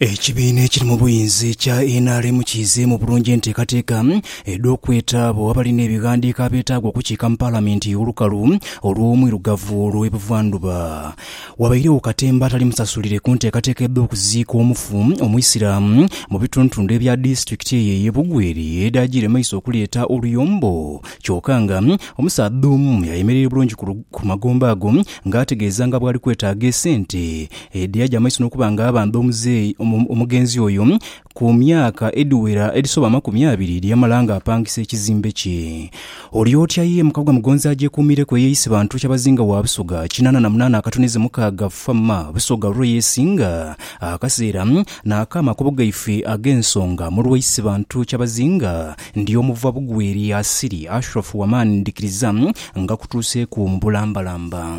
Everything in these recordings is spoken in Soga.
Ekibiina ekiri mu buyinza ekya nrm kiizeemu bulungi enteekateeka edh'okweta abo abalina ebighandiiko abeetaaga okukiika mu Palamenti olukalu olw'Omwirugavu olw'e Buvandhuba. Wabairegho katemba atali musasulire ku nteekateeka edh'okuziika omufu Omuisiraamu mu bitundutundu ebya disitulikiti eyo ey'e Bugweri edhaagiire mu maiso okuleeta oluyombo kyoka nga omusaadha omu yayemerera bulungi ku magombe ago ng'ategeeza nga bw'ali kwetaaga esente Edhi aja maiso n'okuba nga aba nd'omuzeeyi omugenzi oyo ku myaka edhiwera edhisoba amakumi abiri dhi yamala nga apangisa ekizimbe kye. Oli otya ye mukagwa Mugonzi agyekuumireku eyeeyise bantu kyabazinga wa Busoga kinaana na munaana akatuneze mukaaga fa ma Busoga lulwe yeesinga akaseera n'akaama akubo gaife ag'ensonga mu lweeyise bantu kyabazinga ndi omu va bugwe eri asiri Ashraf Wamani ndikiriza nga kutuuseeku mu bulambalamba.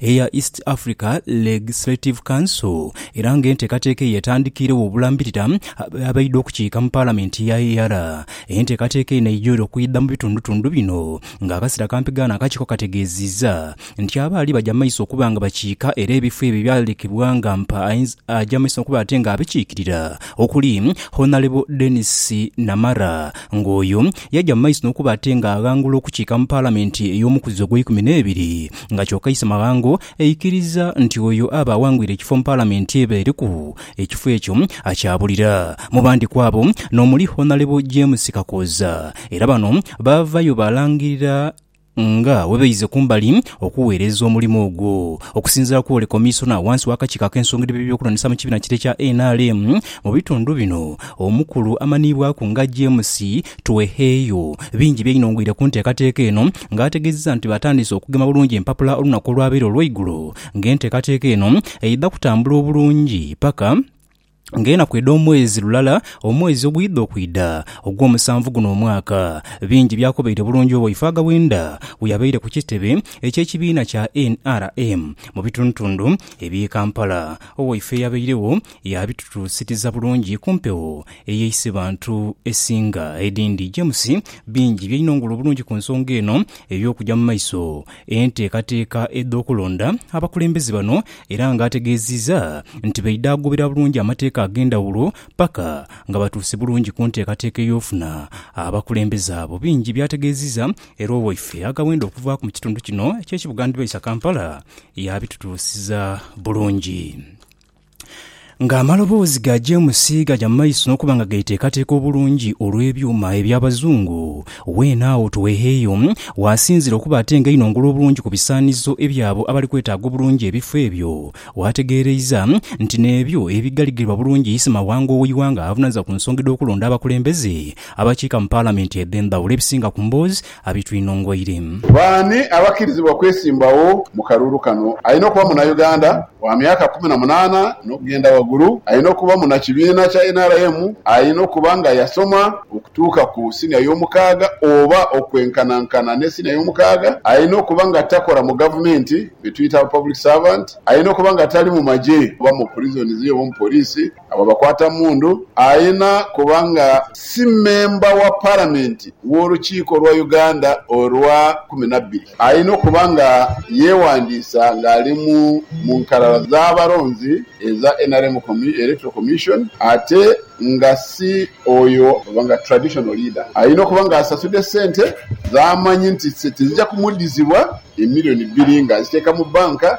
eya East Africa Legislative Council era nga enteekateeka eyo etandikiiregho obulambirira abaidha okukiika mu Palamenti ya EALA. Enteekateeka eno eidha okwidha mu bitundutundu bino nga akasera kampi ghano akakiiko kategeeziiza nti abaali baja mumaiso okuba nga bakiika era ebifo ebyo ebyalekebwa nga mpa aja mumaiso okuba ate nga abikiikirira okuli Honalebo Denis Namara nga oyo yaja mumaiso nokuba ate nga aghangula okukiika mu Palamenti ey'omukuzi ogweikumi n'ebiri nga kyoka Issemaghango aikiriza nti oyo aba awangwire ekifo mu Palamenti eba eriku ekifo ekyo akyabulira mu bandi kwabo n'omuli Honalebo James Kakooza era bano baavayo baalangirira nga bwebaize kumbali okuweereza omulimo ogwo. Okusinziira ku Ole Komisona wansi w'akakiiko ak'ensonga edh'ebyokulondesa mu kibiina kite ekya nrm mu bitundu bino, Omukulu amanhiibwaku nga James Tweheeyo. Bingi byainongwire ku nteekateeka eno nga ategeezeza nti batandiise okugema bulungi empapula olunaku olwabaire olweigulo nga enteekateeka eno eidha kutambula obulungi paka nga enaku edhomwezi lulala omwezi ogwidha okwidha ogwomusanvu guno omwaka. Bingi byakobeire bulungi obo Ifaaga Bwenda bweyabaire ku kitebe ekyekibiina kya nrm mu bitundutundu ebye Kampala. Owaife eyabairegho Yaabitutuusiriza bulungi ku mpewo ey'eisibantu esinga edhindi. James bingi byainongole obulungi ku nsonga eno ey'okugya mu maiso enteekateeka edh'okulonda abakulembeze bano era nga ategeeziza nti baidha agoberera bulungi amateeka ag'endhawulo paka nga batuuse bulungi ku nteekateeka ey'ofuna abakulembeze abo. Bingi byategeeziza era owaife agawenda okuvaaku mu kitundu kino eky'ekibuga Ndbaisa Kampala yaabitutuusiza bulungi. Ng'amaloboozi ga Jemusi gaja mu maiso n'okuba nga geeteekateeka obulungi olw'ebyuma eby'Abazungu, weene agho Tuweheyo waasinziire okuba ate nga einho ngulu bulungi ku bisaanizo eby'abo abali kwetaaga obulungi ebifo ebyo. Waategeereiza nti n'ebyo ebigaligirirwa bulungi Issemawanga ow'eighanga avunaanyizibwa ku nsonga edh'okulonda abakulembeze abakiika mu Palamenti edh'endhawulo ebisinga ku mboozi abitwinhongoire. Baani abakirizibwa okwesimbagho mu kalulu kano? Alina okuba Munauganda wa myaka kumi na munaana n'okugenda wagulu, alina okuba munakibiina kya nrm, alina okuba nga yasoma okutuuka ku siniya y'omukaaga oba okwenkanankana ne siniya y'omukaaga, alina okuba nga takola mu gavumenti, betuyita aba public servant, alina okuba nga tali mu magye oba mu prisons oba mu poliisi. Agho bakwata mundu ayena kuba nga si memba wa Palamenti w'Olukiiko lwa Uganda olwa kumi na bbiri, alina okuba nga yeewandiisa ng'ali mu mu nkalala z'abalonzi eza nrm Electoral Commission ate nga si oyo oba nga Traditional Leader. Alina okuba ng'asasudde sente z'amanyi nti tizija kumuddizibwa, emiliyoni bbiri ng'aziteeka mu bbanka.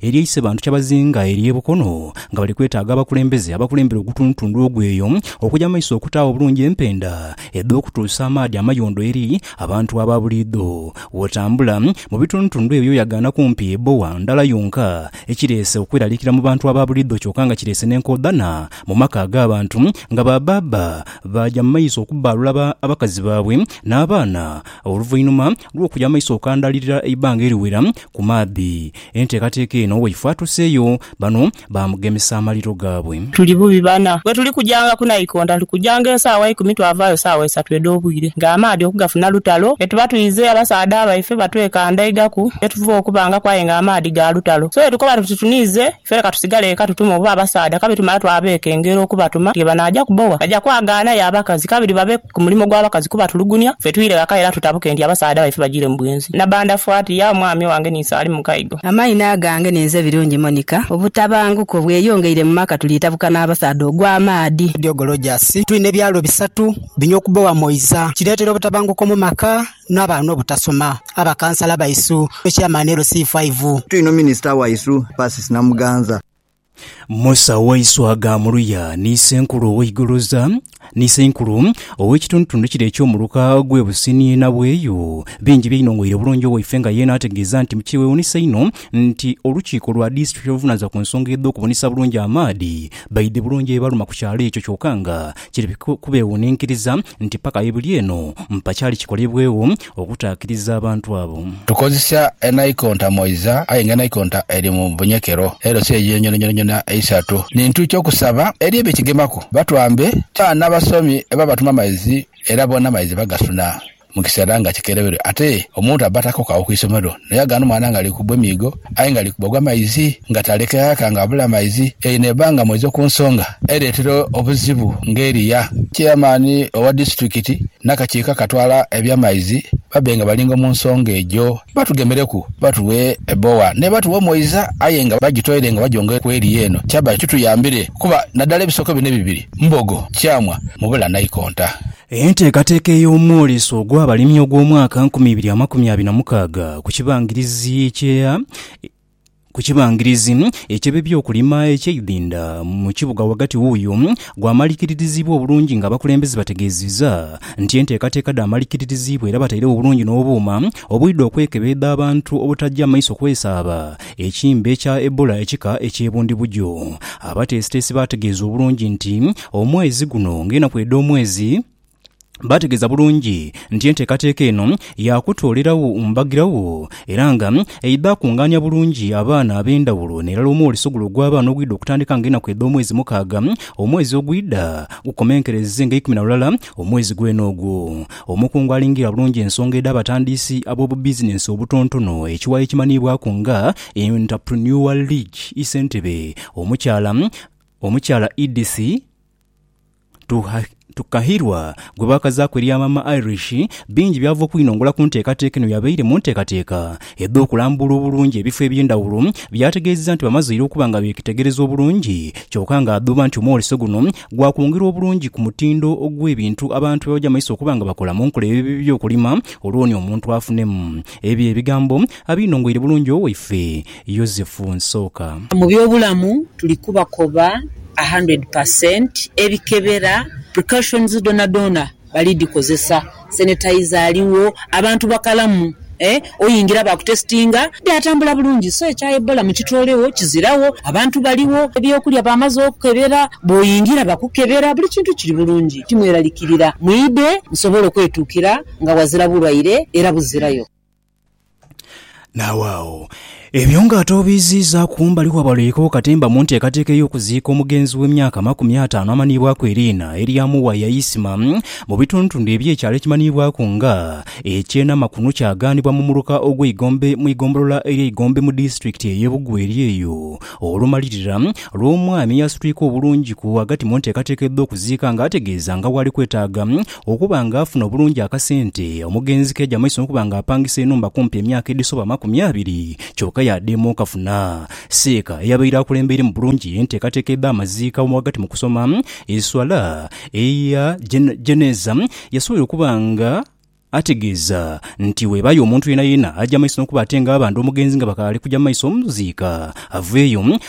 Eriyo eisebantu kyabazinga eri e Bukono nga bali kwetaaga abakulembeze abakulembera ogutundutundu ogwo eyo okuja mu maiso okutaagho obulungi empenda edh'okutuusa amaadhi amayondo eri abantu aba buliidho. Bwotambula mu bitundutundu ebyo oyagaana kumpi ebbowa ndala yonka, ekireese okweraliikira mu bantu aba buliidho kyoka nga kireese n'enkoodhana mu maka ag'abantu nga ba baaba baaja mu maiso okubbaalula abakazi baabwe n'abaana oluvainhuma lw'okuja mu maiso okandaalirira eibanga eriwera ku maadhi Enteekateeka eno bweifa atuseeyo, bano baamugemesa amaliro gaabwe. Tuli bubi bana. Bwe tuli kujanga ku naikonta, tuli kujanga esaawa ikumi twavaayo saawa isatu edh'obwire nga amaadhi okugafuna lutalo. Bwe tuba twize, abasaadha baife batwekandaigaku ye tuva okubangaku aye nga amaadhi ga lutalo. So bwe tukoba tuti tuniize, ife leka tusigale eka tutume oba abasaadha kabiri tumale twabeekengera okubatuma nti bwe banaaja ku bowa baja kwagaana ye abakazi kabiri babe ku mulimo gwa bakazi kubatulugunia, fe twire ghaka era tutabuke nti abasaadha baife bajiire mu bwenzi. Nabanda fwati, Yao mwami wange ni Saali Mukaigo. Amaino agange ni nze Birungi Monica. Obutabanguko bweyongeire mu maka tuli tabuka n'abasaadha ogwa maadhi. Diogo Rogers, Twine ebyalo bisatu bino okubowa Moiza kireetera obutabanguko mu maka n'abaana obutasoma, abakansala baisu, ne Chairman LC5. Twino Minisita waisu Persis Namuganza. Musa waiswa aghaamuluya ni Isenkulu ow'eigoloza, ni Isenkulu ow'ekitundutundu kire eky'omuluka gw'e businiina bw'eyo. Bingi byainhong'oire obulungi owaife nga ye n'ategeeza nti mukyewuunisa inho nti olukiiko lwa disitulikiti oluvunanizibwa ku nsonga edh'okubunisa bulungi amaadhi baidhi bulungi ebibaluma ku kyalo ekyo kyoka nga Kiri kubeewuninkiriza nti paka aibuli eno mpakyali kikolebwegho okutaakiriza abantu abo. Tukozesa enaikonta moiza aye nga enaikonta eri mu bunyekero elo si eyo yonyonayonayona eisatu. Ni ntu ki okusaba eri ebyo kigemaku? Batwambe, Cha nabasomi eba batuma maizi era bona maizi bagasuna. mu kiseera nga kikereberwe ate omuntu abba takokagho ku isomero naye agana omwana nga ali kubwa emiigo aye nga ali kubwa gwa maizi nga taleka ghaka nga abula maizi eyo n'ebba nga mweizo ku nsonga ereetera obuzibu ng'eriya. Cheyamaani owa disitulikiti n'akakiiko akatwala eby'amaizi babbe nga balingo mu nsonga egyo batugemereku batughe ebbowa n'ebba tughe omweiza aye nga bagitoire nga bagyongere ku eriya eno kyabba kituyambire kuba naddala ebisoko bino ebibiri Mbogo, Kyamwa mubula naikonta. Enteekateeka ey'omwoleso ogw'abalimi ogw'omwaka nkumi ibiri amakumi abiri na mukaaga ku kibangirizi ekye ku kibangirizi eky'ebyokulima eky'eidhinda mu kibuga ghagati wuuyo gwamaliikiririzibwa obulungi nga abakulembeze bategeezezza nti enteekateeka dhaamaliikiririzibwa era bataire wo bulungi n'obuuma obwidha okwekebeedha abantu obutaggya maiso kwesaaba Ekimbe kya Ebola ekika eky'e Bundibugyo. Abateesiteesi baategeeza obulungi nti omwezi guno ng'enaku edh'omwezi Baategeeza bulungi nti enteekateeka eno ya kutoolerawo mbagirawo era nga eidha kungaania bulungi abaana ab'endhawulo n'erala omwoli sogula ogw'abaana ogwidha okutandika ng'enaku edh'omwezi mukaaga omwezi ogwidha gukomenkereze ng'eikumi na lulala Omwezi gwene ogwo, omukungu alingira bulungi ensonga edh'abatandiisi ab'obubizinensi obutontono ekiwayi ekimanhiibwaku nga Entrepreneur League i Ssentebe, Omukyala Omukyala Edith Tukahirwa gwe baakazaaku erya Maama Irish, bingi by'ava okwinongola ku nteekateeka eno yabaire mu nteekateeka edh'okulambula obulungi ebifo eby'endhawulo, byategeezezza nti bamazeire okuba nga beekitegereza obulungi kyoka ng'adhuuba nti omwoleso guno gwa kwongera obulungi ku mutindo ogw'ebintu abantu bye baja mu maiso okuba nga bakola mu nkola eyo by'okulima olwo ni omuntu afunemu. Ebyo bye bigambo abinongoire bulungi owaife Yozefu Nsooka. Mu by'obulamu tuli kubakoba a hundred per cent ebikebera, precautions, dhonadhona bali dhikozesa, sanitizer aligho, abantu bakalamu eeh oyingira bakutesitinga byatambula bulungi so ekya Ebola mukitolegho kiziragho abantu baligho, ebyokulya bamaze okukebera bwoyingira bakukebera buli kintu kiri bulungi timweralikirira mwidhe musobole okwetukira nga ghazira bulwaire era buzirayo. Naawe agho ebyo nga ate obiiziiza kumbali kwa balwoirewo katemba mu nteekateeka ey'okuziika omugenzi w'emyaka amakumi ataanu amanhiibwaku eriina erya Muwaya Isma mu bitundutundu eby'ekyalo ekimanhiibwaku nga eky'e Namakunu kyagaanibwa mu muluka ogw'Eigombe mu igombolola erya Igombe mu disitulikiti ey'e Bugwa eri eyo olumalirira lw'omwami eyasitwika obulungi ku ghagati mu nteekateeka edh'okuziika nga ategeeza nga bwali kwetaaga Okuba nga afuna obulungi akasente, omugenzi keeja maiso n'okuba nga apangisa enhumba kumpi emyaka edhisoba amakumi abiri, kyoka yaadema okafuna. Seeka eyabaire akulembeire mu bulungi enteekateeka edh'amaziika mu ghagati mu kusoma eswala eya Jeneeza, yasobola okuba nga ategeeza nti bwebaayo omuntu yeenayeena aja maiso n'okuba ate nga abandha omugenzi nga bakaali kuja maiso muziika, aveeyo.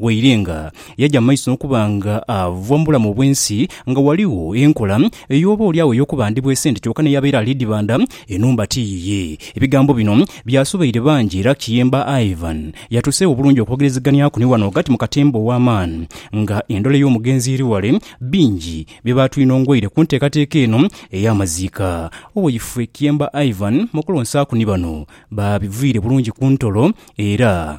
Waire nga yaja mu maiso n'okuba nga ava mu bulamu obw'ensi, nga ghaligho enkola ey'oba oli agho ey'okubandibwa esente kyoka n'eyabeera ali dhibanda, enhumba ti yiye. Ebigambo bino byasobeire bangi era Kiyemba Ivan yatuuseegho bulungi okwogerezeganyaku ni wano ghagati mu katemba ow'amaani nga endhole y'omugenzi eri ghale. Bingi bye baatwinhongweire ku nteekateeka eno ey'amaziika. Owaifwe Kiyemba Ivan mu kulonsaaku ni bano baabiviire bulungi ku ntolo era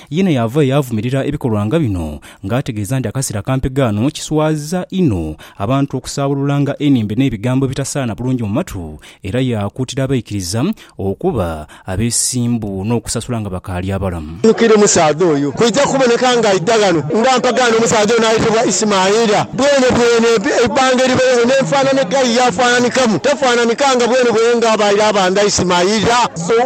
Yeena yaavayo yaavumirira ebikolwa nga bino nga ategeeza nti akaseera akampi ghano kiswaza inho abantu okusaabululanga enhimbe n'ebigambo ebitasaana bulungi mu matu era yaakuutira abaikiriza okuba abeesimbu n'okusasula nga bakaali abalamu. Nnhukira omusaadha oyo. Kwija kuboneka ng'aidha ghano nga mpagaano omusaadha ono ayetebwa Isimaila. Bwenebwene eibbanga eribereho n'enfaanana edhai yaafaananikamu, tafaananika nga bwenebwene ng'abaire abandha Isimaila.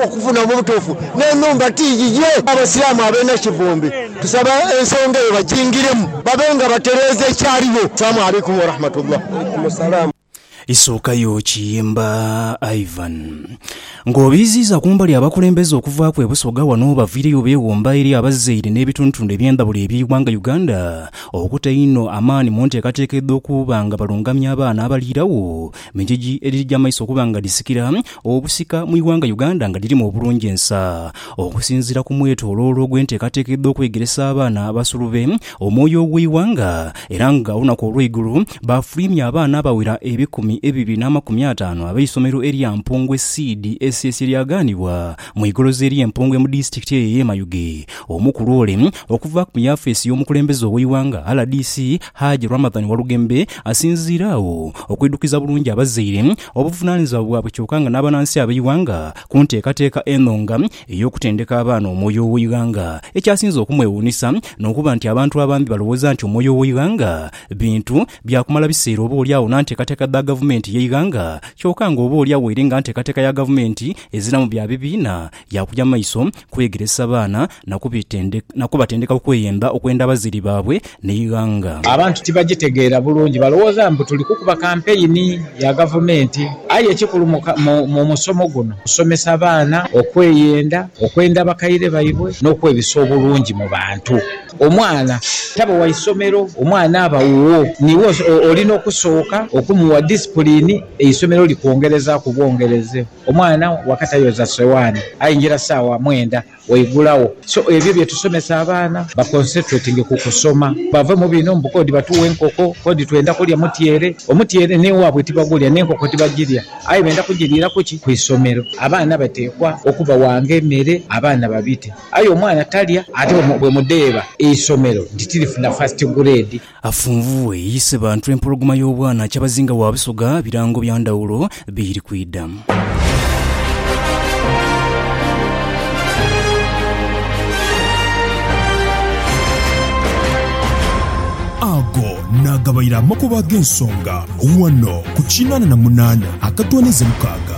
Okufuna obutuufu n'enhumba ti yiye. Abasiraamu ab'e Nakivumbi tusaba ensonga eyo bajingiremu babe nga batereeza ekyaligho. Salaamu Alaikum Warahmatullah. Isuukayo Kiyimba Ivan. Ng'obiiziiza kumbali abakulembeze okuvaaku e Busoga wano obaviireyo beewomba eri abazaire n'ebitundutundu eby'endhawulo eby'eighanga Uganda okuta einho amaani mu nteekateeka edh'okuba nga balungamya abaana abaliirawo mu ngeri edhija maiso okuba nga dhisikira Obusika mu ighanga Uganda nga lirimu obulungi ensa. Okusinziira ku mwetoloolo ogw'enteekateeka edh'okwegeresa abaana abasulube omwoyo ogw'eighanga era nga olunaku olweigulo baafulwimya abaana abawera ebikumi ebibiri n'amakumi ataanu ab'eisomero erya Mpongwe Seed SS eryagaanibwa mu igolozi erye Mpongwe mu disitulikiti eyo eye Mayuge omukulu ole okuva mu yafeesi y'omukulembeze ow'eighanga rdc Hajj Ramadhan Walugembe asinziire agho okwidhukiza bulungi abazaire Obuvunaanyizibwa bwabwe kyoka nga n'abanansi ab'eighanga ku nteekateeka eno nga ey'okutendeka abaana omwoyo ow'eighanga. Ekyasinze okumwewuunisa n'okuba nti abantu abambi balowooza nti omwoyo ow'eighanga bintu bya kumala biseera oba oli agho na nteekateeka dha gavumenti y'eighanga kyoka nga oba oli agho eri nga nteekateeka ya gavumenti eziramu bya bibiina Yaakuja maiso kwegeresa baana na kubatendeka okweyemba okwenda abazaire baabwe n'eighanga. Abantu tibagitegeera bulungi, balowooza mbu tuli kukuba kampeyini ya Gavumenti. Aye ekikulu mu musomo guno kusomesa baana okweyenda, okwenda bakaire baibwe n'okwebisa obulungi mu bantu. Omwana taba wa isomero, omwana aba wuwo. Niiwe olina okusooka okumuwa disipulini, eisomero likwongerezaaku bwongereze. Omwana waka tayoza sowaani aingira saawa mwenda waigula wo so ebyo byetusomesa abaana ba concentratinge ku kusoma bave mu bino mbu kodi batuwa enkoko kodi twenda kulya mutyere omutyere newabwe tibagulya nenkoko tibagilya aye benda kujiliira kuki ku isomero abaana batekwa okubawaanga emere abaana babite aye omwana talya ate bwemudheeba eisomero nti tilifuna first grade Afunvughe yise bantu empologoma y'obwana kyabazinga wa Busoga birango bya ndhawulo biri kwidha. Ago naagabaire amakubo ag'ensonga ghano ku kinaana na munaana akatooneza mukaaga.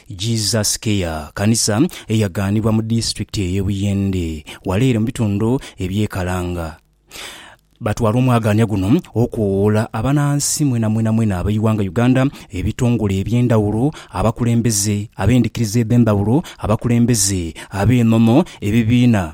Jesus Care kanisa eyaganibwa mu disitulikiti eye Buyende wala ere mu bitundu ebye Kalanga. Batwala omwagaanya guno okowoola abanansi mwena mwena mwena abeighanga Uganda, ebitongole ebyendawulo, abakulembeze abendikiriza edhendhawulo, abakulembeze, abenono, ebibiina